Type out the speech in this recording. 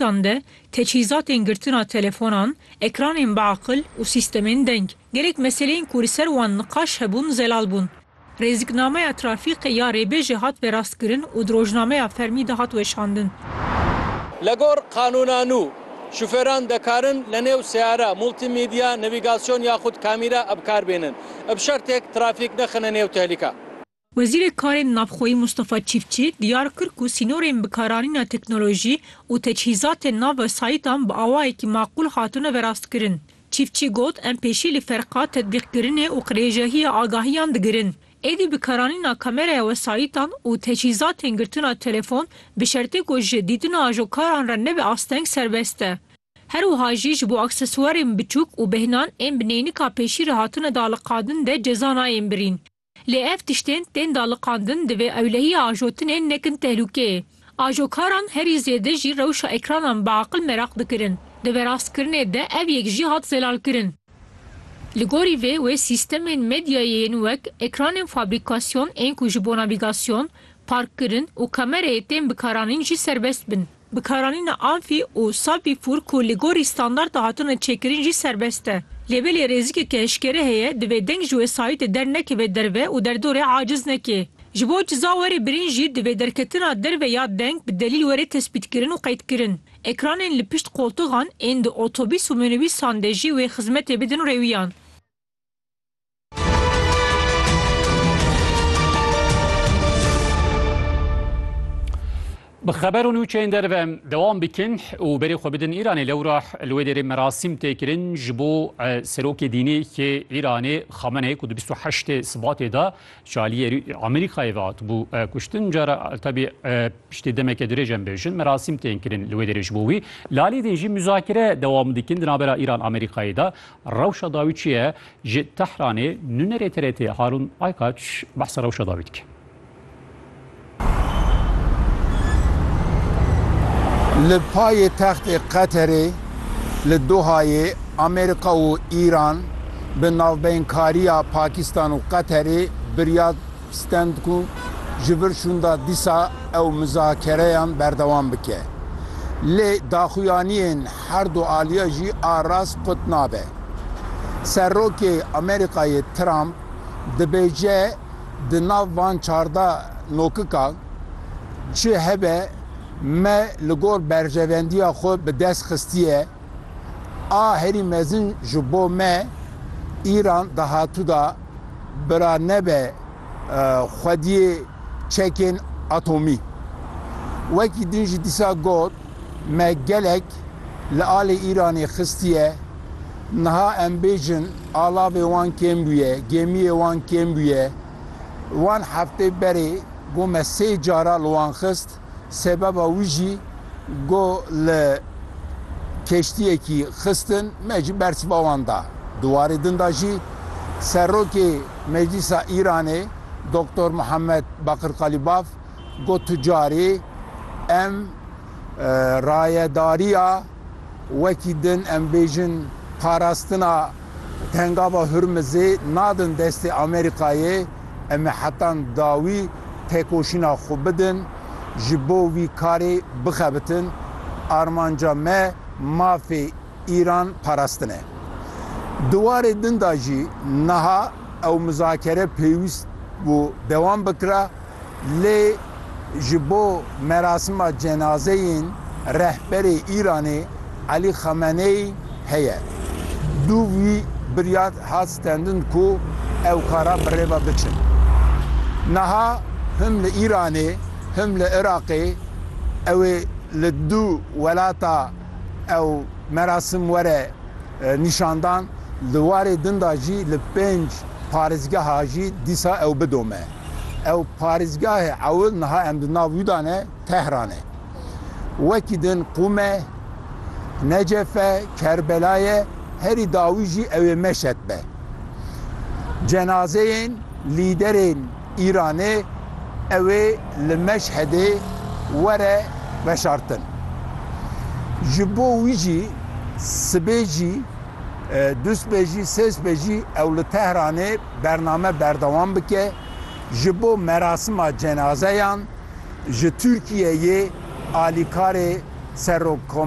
wetan de teçhîzatên girtina telefonan, ekranên biaqil û sîstemên deng. Gelek meseleyên ku li ser wan niqaş hebûn zelal bûn. Rêziknameya trafîkê ya rêbêjê hat verastkirin û di rojnameya fermî de hat weşandin. Li gor qanûna nû, şofêran dikarin li nêw seyara multîmedya, navîgasyon yaxud kamîra bikarbênin, bi şertêk trafîk nexine nêw tehlîka. Wezîrê Karên Navxweyî Mustafa Çîfçî diyar kir ku sînorên bikaranîna teknolojî û teçhîzatên nav wesayîtan bi awayekî maqûl hatine verastkirin. Çîfçî got, Em pêşî li ferqa tetbîqkirinê û qirêjehiya agahiyan digirin. Êdî bikaranîna kameraya wesayîtan û teçhîzatên girtina telefon bi şertê ku ji dîtina ajokaran re nebe asteng serbest e. Her wiha jî ji bo aksesuarên biçûk û bêhnan ên bi neynika pêşî re hatine daliqadin de ceza nayên birîn. Lê ev tiştên tên daliqandin divê ewlehiya ajotinê nekin tehlûkê. Ajokaran herî zêde jî rewşa ekranan bi aqil meraq dikirin. Di verastkirinê de ev yek jî hat zelalkirin. Li gorî vê wê sîstemên medyayê yên wek ekranên fabrîkasyon ên ku ji bo navîgasyon, parkkirin û kamereyê tên bikaranîn jî serbest bin. Bikaranîna amfî û salpîfûr ku li gorî standarta hatine çêkirin jî serbest e. Lê belê rêzikeke eşkere heye divê deng ji wesayîtê dernekeve derve û derdorê aciz neke. Ji bo ciza were birîn jî divê derketina derve ya deng bi delîl were tespîtkirin û qeydkirin. Ekranên li pişt qoltixan ên di otobîs û minobîsan de jî wê xizmetê bidin rêwiyan. Bi xeber û nûçeyên derve dewam bikin û berê xwe bidin Îranê lewra li wê derê merasîm tê kirin ji bo serokê dînê yê Îranê Xameneyê ku di 28 Sibatê de çaliyê Amerîkayê ve hatibû kuştin cara tebî piştê demeke dirêj em bêjin merasîm tên kirin li wê derê ji bo wî lalî din jî muzakire dewam dikin di navbera Îran Amerîkayê de Rewşa dawî çi ye? Ji Tehranê nûnerê TRT'ê Harûn Aykaç behsa rewşa dawî dike. Li paytextê Qeterê li Dohayê Amerîka û Îran bi navbeynkariya Pakîstan û Qeterê biryar Stend ku ji vir şûnda dîsa ew mizakereyan berdewam bike. Lê daxuyaniyên herdu aliya jî a rast qut nabe. Serokê Amerîkayê Trump dibêje di nav van çardeh nokikan çi hebe me li gor berjevendiya xwe bi dest xistiye. A herî mezin ji bo me Îran dahatuda bira nebe xwediyê çekên atomî. Wekî din jî dîsa got, Me gelek li alê Îranê xistiye, niha em bêjin alavê wan kêm bûye, gêmiyê wan kêm bûye. Wan heftê berê got me sê cara li wan xist. Sebeba wî jî go li keştiyekî xistin me ji bersiva wan da. Di warê din de jî Serokê Meclîsa Îranê Doktor Muhammed Bakir Kalîbaf got tu carî em rayedariya. Wekî din em bêjin parastina Pengava Hurmizê nadin destê Amerîkayê, em ê hetan dawî têkoşîna xwe bidin, ji bo vî karê bixebitin. Armanca me mafê Îran parastin e. Di warê din de jî niha ew muzakere pêwîst bû dewam bikira. Lê ji bo merasima cenazeyên rehberê Îranê Elî Xameneyî heye. Dû wî birya hat stendin ku ew kara bi rê ve biçin. Niha him li Îranê him li Iraqê ew ê li du welata ew merasim were nîşandan, di warê din de jî li pênc parêzgeha jî dîsa ew bidome. Ew parêzgahê ew niha em di nav wî de ne Tehran e. Wekî din Qum e, Necef e, Kerbela ye, herî dawî jî ew ê Meşed be. Cenazeyên lîderên Îranê ew ê li Meşhedê were veşartin. Ji bo wî jî sibê jî, dûsbê jî, sêsbê jî ew li Tehranê bername berdewam bike ji bo merasima cenazeyan ji Tirkiyeyê alîkarê Serokko